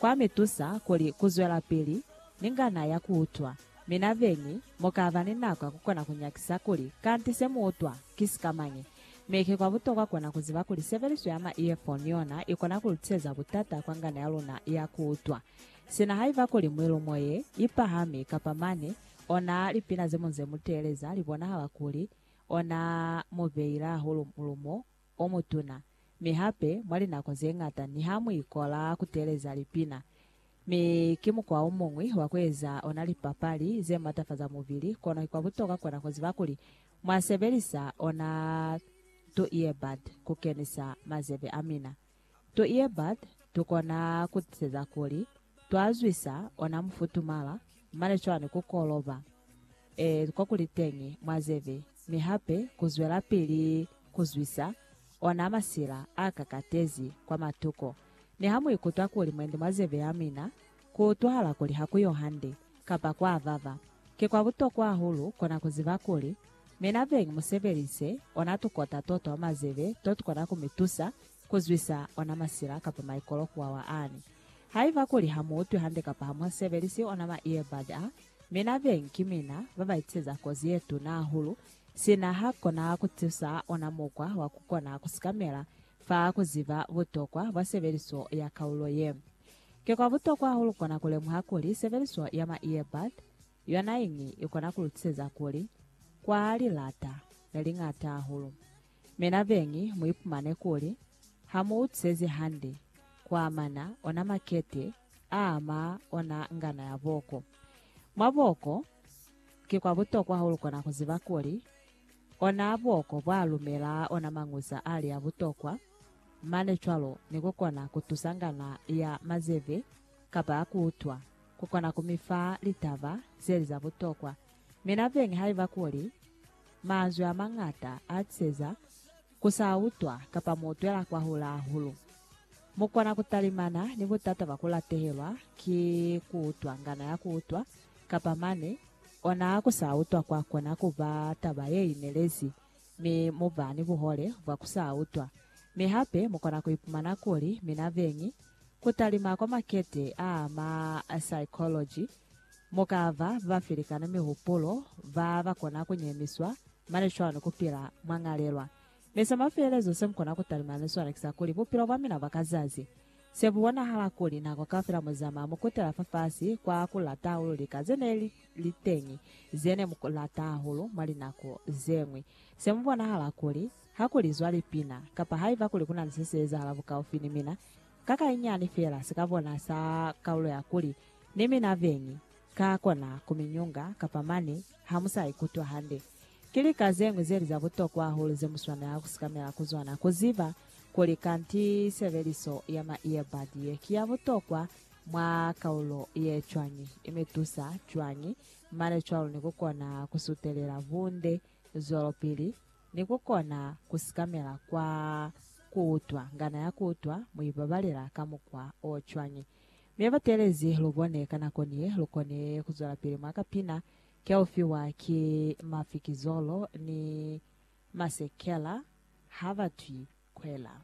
Kwa mi tusa kuli ku zwelapili ni ngana ya ku utwa. Mi na beñi mu ka ba ni nako ya ku kona ku nyakisa kuli kanti se mu utwa ki sikamañi. Mi ki kwa butokwa kona ku ziba kuli sebeliso ya ma earphone yona i kona ku lu tiseza butata kwa ngana ya luna ya ku utwa. Sina haiba kuli mwilu mo ye i pahami kapa mane ona lipina ze mu nze mu teeleza li bonahala kuli ona mu beile hahulu mulumo, o mutuna, mi hape mwa linako ze ñata niha mu ikola ku teeleza lipina, mi ki mukwa o muñwi wa ku eza ona lipapali ze matafaza mubili, kono ki kwa butokwa kwa na ku ziba kuli mwa sebelisa ona tu earbud ku kenisa mazebe a mina. Tu iebate tukona kutiiseza kuli twa zwisa ona mufutumala, mane cwani ku koloba, ee, kwa kuli teñi mwa zebe, mi hape ku zwelapili ku zwisa ona masila a kakatezi kwa matuko. Niha mu ikutwa kuli mwendi mwa zebe ya mina, Ku utwahala kuli ha ku yo hande, kapa kwa vava, ki kwa butokwa hahulu kona ku ziba kuli, Mi na beñi mu sebelise ona tukota to twa mazebe to tu kona ku mi tusa ku zwisa ona masila kapa maikolo ku wawa ani. Haiba kuli ha mu utwi hande kapa ha mu sebelisi ona ma earbud a, mi na beñi ki mina ba ba itiseza kozi ye tuna hahulu, sina ha kona ku tusa ona mukwa wa ku kona ku sikamela fa ku ziba butokwa bwa sebeliso ya kaulo ye. Ki kwa butokwa hahulu kona kulemuha kuli sebeliso ya ma earbud yonaiñi ikona kulutiseza kuli kwaha lilata leliñata hahulu. Mi nabeñi muipumane kuli hamuutisezi hande kuamana ona makete aama ona ngana ya booko. Mwa booko, ki kwa butokwa hahulu kona kuziba kuli Ona buoko bwa lumela ona mañuza ali a butokwa, mane cwalo ni ku kona ku tusa ngana ya mazebe kapa ya ku utwa ku kona ku mi fa litaba ze li za butokwa. Mi nabeñi haiba kuli manzwi a mañata a tiseza? Ku sa utwa kapa mo twela kwa hula hahulu. Mu kona ku talimana ni butata bwa ku latehelwa ki ku utwa ngana ya ku utwa, kapa mane ona ku sa utwa kwa kona ku ba taba ye inelezi, mi mu ba ni buhole bwa ku sa utwa. Mi hape mu kona ku ipumana kuli mina beñi ku talima kwa makete a ma psychology Mu ka ba ba felikana mihupulo, ba ba kona ku nyemiswa, mane cwalo ni ku pila mwa ñalelwa. Mi sa mafelelezo se mu kona ku talimela ni sona ki sa kuli, bupilo bwa mina bwa ka zazi, se bu bonahala kuli nako kaufela mu zamaya mu kutela fafasi kwa ku lata hahulu lika ze ne li li teñi, ze ne mu lata hahulu mwa linako ze ñwi. Se mu bonahala kuli, ha ku lizwa lipina, kapa haiba kuli ku na ni se si ezahala bukaufi ni mina, ka kainyani feela si ka bona sa kaulo ya kuli, Ni mina beñi, ka kona ku mi nyunga, kapa mane ha mu sa ikutwa hande. Ki lika ze ñwi ze li za butokwa hahulu ze mu swanela ku sikamela ku zona. Ku ziba kuli kanti sebeliso ya ma earbud ye ki ya butokwa mwa kaulo ye cwañi, i mi tusa cwañi, mane cwalo ni ku kona ku sutelela bunde zwelopili ni ku kona ku sikamela kwa ku utwa. Ngana ya ku utwa mu i babalela ka mukwa o cwañi? Mi ba telezi lu bone ka nako ni lu koni ku zwelapili mwa ka pina ki ya u fiwa ki mafikizolo ni masekela ha ba twi kwela.